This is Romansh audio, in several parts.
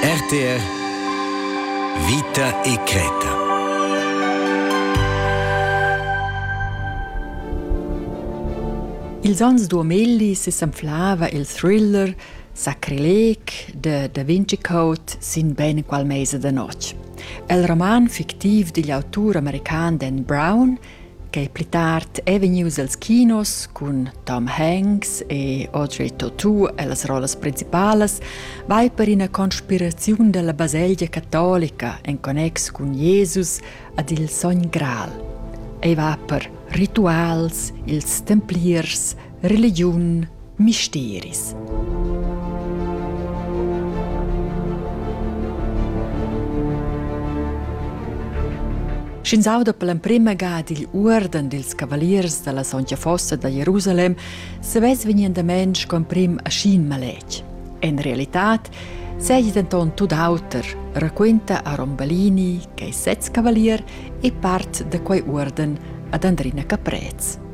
RTR Vita e Creta Ils ans 2000 s'anflava il thriller Sacrilec de Da Vinci Code sin ben qual mese da notg. El roman fictiv digl autur american Dan Brown Quei pli tard ei vegnius els kinos cun Tom Hanks e Audrey Tautou ellas rollas principalas, vai per ina conspiraziun dalla baselgia catolica en connex cun Jesus ad il sogn Gral. Ei va per rituals, ils templiers, religiun, misteris. Sch'ins auda per l'emprima gada il uorden dils cavaliers dalla sontga fossa da Jerusalem, savess vegnendament sco emprim aschin maletg. En realitat seigi denton tut auter, raquenta Aron Balini, che è sez cavalier e part da quei uorden ad Andrina Caprez.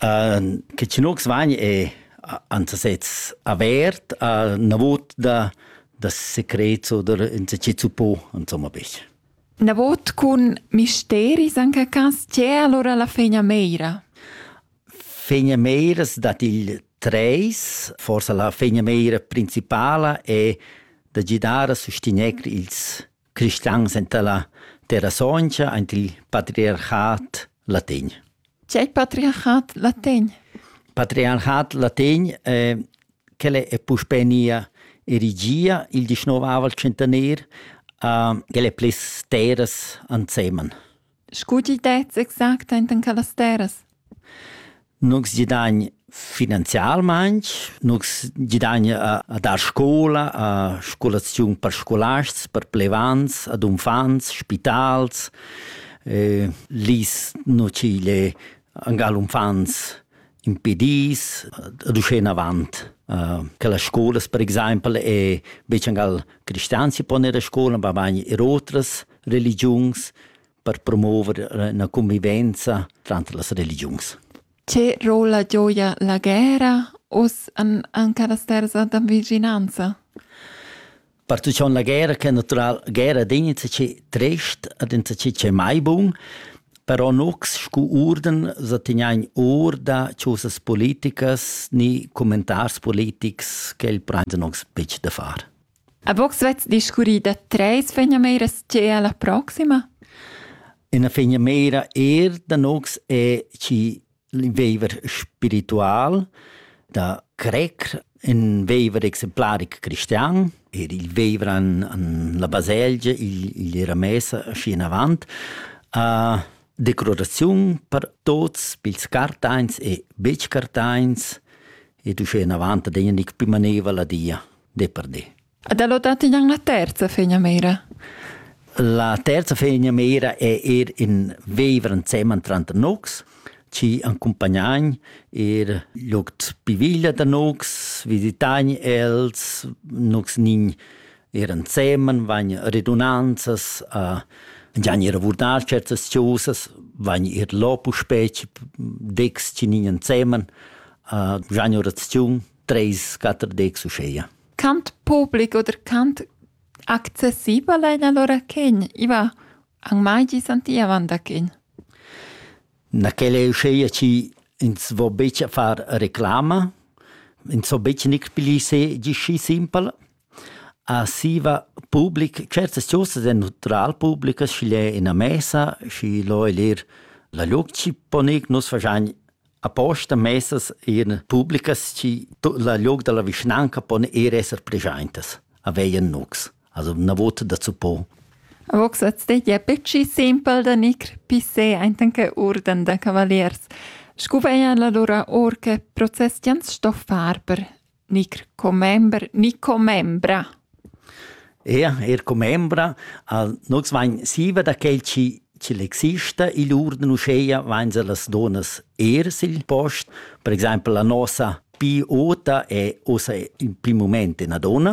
Ehm che tschinux vagn è ansasez avert, üna vota da secrets oder insatgi suppò insomma bich. Na vot cun misteris in quel cas, c'è allora la fegna meira? Fegna meiras dat il treis, forsa la fegna meira principala è da gidar a sustegner ils cristians enta la terra sontga ant il patriarchat latin. C'è il patriarchat latin? Patriarchat latin eh, quelle è puspenia erigia il 19 al centenaire, eh, quelle è plis terras anseman. Scu til dets exact enten quellas terras? Nus gidagn finanzialmaing, nus gidagn a, a dar scoula, a scolaziun per scolasts, per plevants, ad unfants, spitals. E lis nu ci gle angal unfants impedis ad uschè inavant. Uh, che las scolas per exaimpel e betg angal cristians si pon ir a scola, ma bagn er otras. religiuns per promover la convivenza tranter las religiuns. Che rol la gioia la guerra us an, an carasters da vicinanza? Participaziun la guerra che natural guerra din che trest ad in ce mai bun però nux scu urden sa teniain or da ciosas politicas ni commentars politics che il prenden uns pic da far. A vos vets discurri da treis fegnameras che è la proxima? Ina fegnamera er da nox è chi veiver spiritual da crer in veiver exemplaric cristian, er il veiver an, an la baselgia, igl, igl era messa schi in avant, a declaraziun per tots, pils cartains e betg cartains, ed uschè in avant ad egna nig più maneva la dia. di per di. Ed è dati in la terza fegna meira? La terza fegna meira è er in viver insieme tra nox, ci accompagnain er locs piviglia da nox, visitain els, nox nin er insieme, van redunanzas, a gian er vurdar certas choses, van er lopu specie, dex ci nin insieme, a gian oraziun, Treis, quater decs uscheia. Cant public oder cant accessibel ein allora chen? Iva an mai gi santiavan da chen? Na quella è uscheia ci ins vo betg a far reclama, ins vo betg nic pli se gisci simpel. A siva public, certas ciosas è neutral publicas, schi l'è ina mesa, schi lo è lir la luc ci ponec, nus fagian Aposta messas in publicas chi la log da la vischnanca pon ir esser preschaintas a veien nux. Also una vota dazu po. Vox at stegia pecci simpel da nicr pisse aintanke urden da cavaliers. Scu veia la lura or che process jans sto far per Nicr commember ni commembra? Ja, er commembra. Uh, nus vain siva da quel chi ch'el exista igl urden uscheia vain se las donas er sil post. Per exempel la nosa pi ota è osa in prim moment ina donna,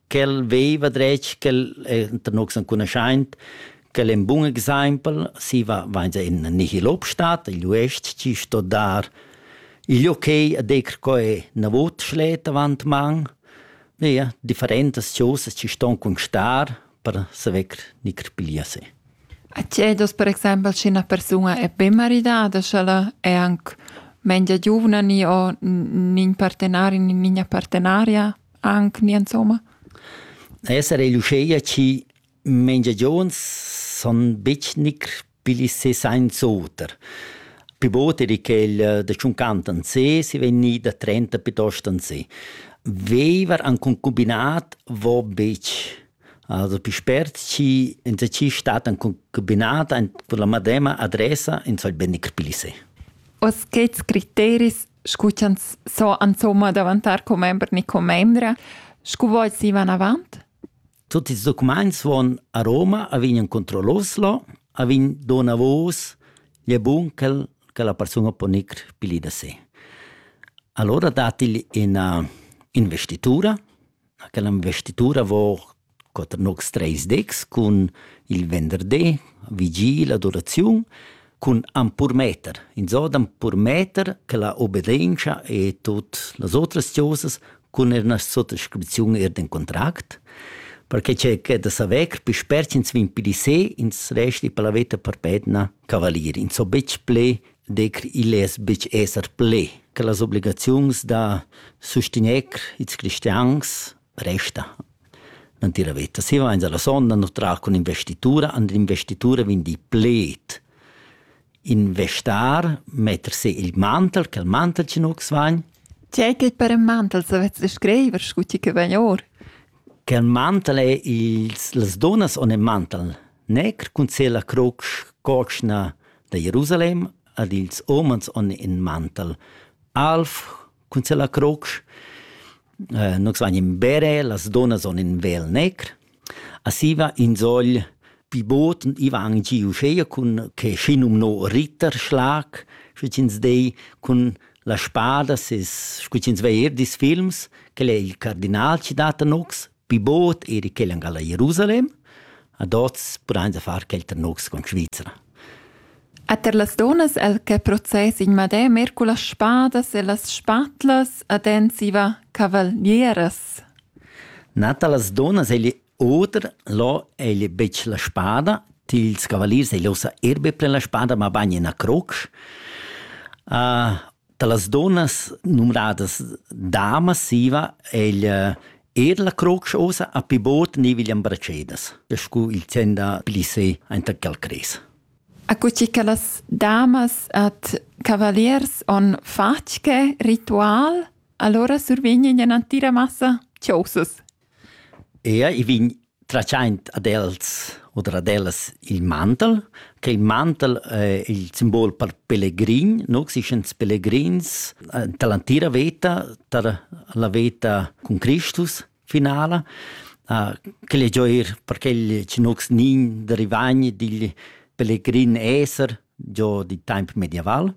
ch'el veva dretg ch'el enta nus enconuschaint che el in bun exaimpel si va vainza in nihil obstat il uest chi sto dar il okay a decr co è na vot schlet avant man ja differentas chosas chi ston constar per saver ni crpilia se A cedos per exempel sche una persona è ben maridada, sch'ella è anche meglio giovane o nin partenaria, nin partenaria? Anc ni insomma? Esser egl uscheia chi mengiagions son betg nicr pigl ses aint oter. Pi bod er quel eh, da tschunquant an se, si vegn ni da trenta piuttost an se. Veiver an concubinat vo betg. Also pi spert chi insatgi stat an concubinat con la madema adressa, ins soll be nicr pigl se. Oz chets criteris scu ch'ans so insomma davantar commember ni commembra, scu vols ivan avant? Tutti ils documents van a Roma, a vegnan contro l'Oslo, a vegn donavos gli bunkel che la persuna può nicr pili da sé. Allora dat igl ina investitura, quella investitura vor quater nocs treis decs cun il venderdi, vigil, adoraziun, cun ampurmeter. Insò d'ampurmeter che la obbedienza e tut las otras cosas cun er una sottoscrizione er den contract, perché c'è che da saver più sperci ins vin più di se ins resti per la vita per pedna cavalier. Ins so betg ple decr igl less betg esser ple che las obligaziuns da sustegner ils cristians resta natira veta. Si vains alla sonda nu tra cun investitura, and investitura vin di pled. Investar, metter se il mantel, che il mantel ci nu vagn. C'è che per un mantel savetz descriver scu ti che vegn or? Che il mantel è ils, las donas on il mantel Necker cun sella cruc cotschna da Jerusalem ad ils umans on in mantel. Alf cun sella cruc. Eh, nus vagn in bere, las dunnas on in vel necker. A siva in sogl pi bot i va anc gi uscheia cun che schinum no Ritterschlag, scu ch'ins dei, cun la spada, sis, scu ch'ins vei er dis films, quel è il cardinal chi dat a nux, Pi bod eri quel angal a Jerusalem, ad oz pudains far quel ternocs con Svizra. E ter las donas el che process in madè mer cu las spadas e las spatlas ad ensiva cavalieras. Nata las donas egli oder lo egli betg la spada, tils cavaliers egli osa erbe pre la spada, ma bagn in a crocs. Uh, Dallas dunnas numnadas dama siva egl eir la crotsch'osa a pi bod niviglian bracedas, scu il sen da plissé aint a Calcrez. Accussì che las damas ad cavaliers on fatg che ritual, allora survegnen ina entira massa chosas. Ea, i vegn tratschaint ad els oder ad ellas il mantel, che il mantel es il simbol per pelegrin, no existan pelegrins anta l'antira veta, tar la veta cun Cristus finala. Quel es giò eir per quel chi no gnign da rivagn digl pelegrin esser. giò d'in temp medieval.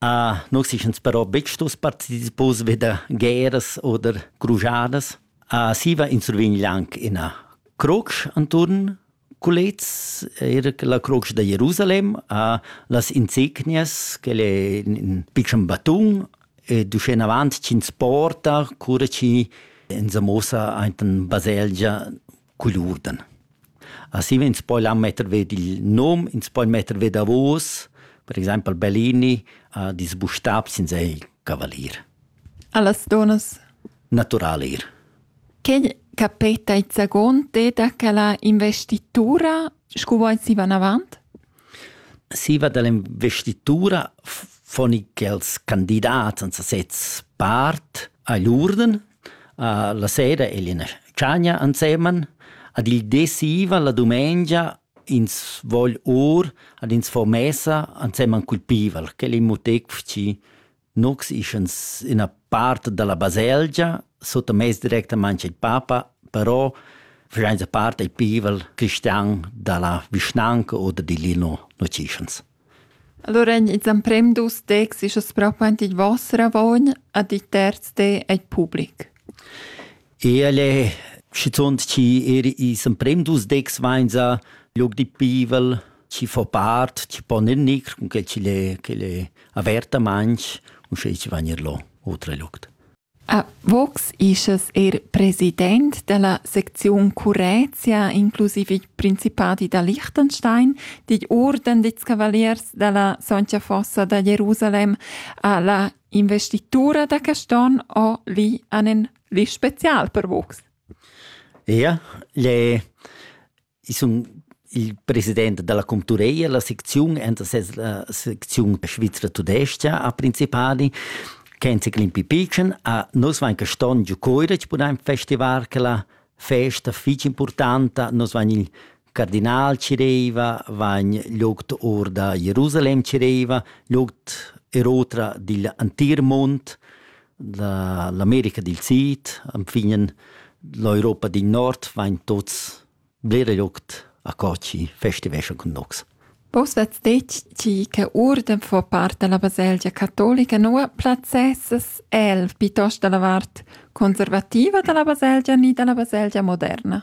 Uh, nus eschans però betg stos partecipos vi da guerras oder crujadas. Uh, siva insurvegn anc ina croce anturn culets, era la croce da Jerusalem, a las insegnias, che è in piccon batun, e duschen avant ch'ins porta, cura chi in sa mossa ein baselgia cul urden. Assi vegns poi là metter ved il nom, ins poi metter ved davos, per exempel Bellini ha disbustab sin sei cavalier. Allas donas? Natural ir. Che capeta il zagon deda che la investitura, scu vuoi si van avant? Siva dall'investitura fon i quels candidats en sasez part agl urden. La sera egl ina tschagna ensemen. Ad il di siva la dumengia ins vogl our ad ins fo messa ensemen cul pival. Quel in muteg fci Nux ischans üna part da la baselgia suttamess directamaing al papa, però faschainsa part dal pivel cristian da la vischnanca o da Dilino, nu dschischans. Allora ins emprem dus tecs ischas propo ant il voss ravogn, ad il terz te al public. Ehle, schizunt chi eir i's emprem dus decs vainsa log di pivel, chi fo part, chi pon eir gnir cun que chi'l es chi'l es avertamaing, uschè chi vain eir lo oter luogt. A Vox ischas eir president da la secziun Currezia, inclusiv il Principadi da Liechtenstein, digl Orden dits Cavaliers da la Soncia Fossa da Jerusalem, a la investitura da Caston o li anen Vis special per vus? Ja, le, ich sun il president dalla Cultureia, la secziun enta ses la secziun svizra tudescha a Principadi kenzi klimpi pichen a nos vain caston giu coira ci pudain festivar quella festa fich importanta nos vain il cardinal cireva vagn loct or da Jerusalem cireva loct er otra digl antir mond da l'America dil Sid anfinen l'Europa dil Nord vain tots blera loct a Cocci festivescha cun nox. Vos vets deci che urden fa part della baselgia cattolica nua plazzesses el piuttosto dalla vart conservativa della baselgia ni della baselgia moderna?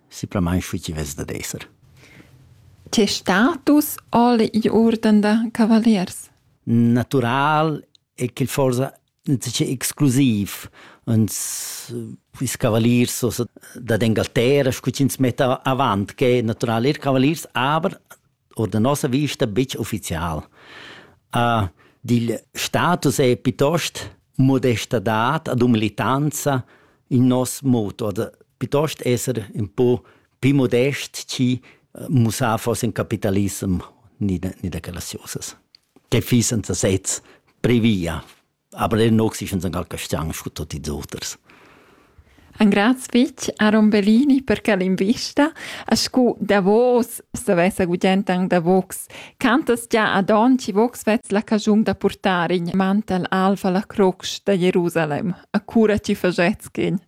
simplamain schi chi vess dad esser. Tes status al i urden da cavaliers? Natural è che forsa exclusiv uns ils cavaliers so da d'Engalterra scu ch'ins metta avant che natural er cavaliers aber oder da nossa vista betg ufficial. Uh, dil status è piuttost modestadad ad umilitanza in nos moto, oder piuttost esser un po più modest ci eh, mussar fosse in capitalism ni da, ni da quella sosas, che fissen sesez previa. Aber den Nox ist uns angal castian scu tutti ils oters. Angraz fich Aaron Bellini per quel invista, a scu davos s'avessa gudient ang da vox. Cantas già ad on ci vox vez la cajung da portare in mantel alfa la crocs da Jerusalem, a cura ci fagetschin.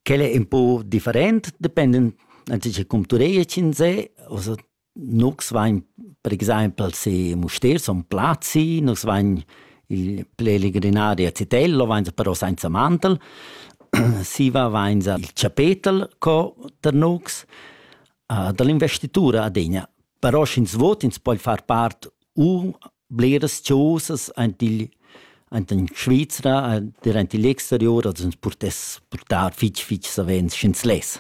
Quelle è un po' different, dependent, anzi cum tu rei cin se, also Nus vain per exaimpel sü Mustér, Son Plazi, nus vain i'l plelegrinaria Zitello, vainsa però sainza mantel, siva vainsa il chapetel co tar nus, da l'investitura adegna. Però sch'ins vot, ins poi far part u bleras chosas aint igl aint in Svizra, der aint igl exterior, als ins purtess purtar fitg, fitg savens sch'ins less.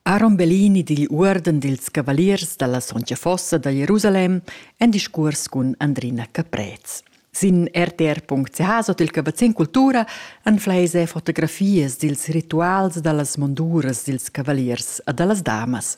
Aaron Bellini digl uorden dils cavaliers dalla sontga fossa da Jerusalem en discurs cun Andrina Caprez. Sin rtr.ch sot il cavazzin cultura anfleis e fotografias dils rituals dallas monduras dils cavaliers a dallas damas.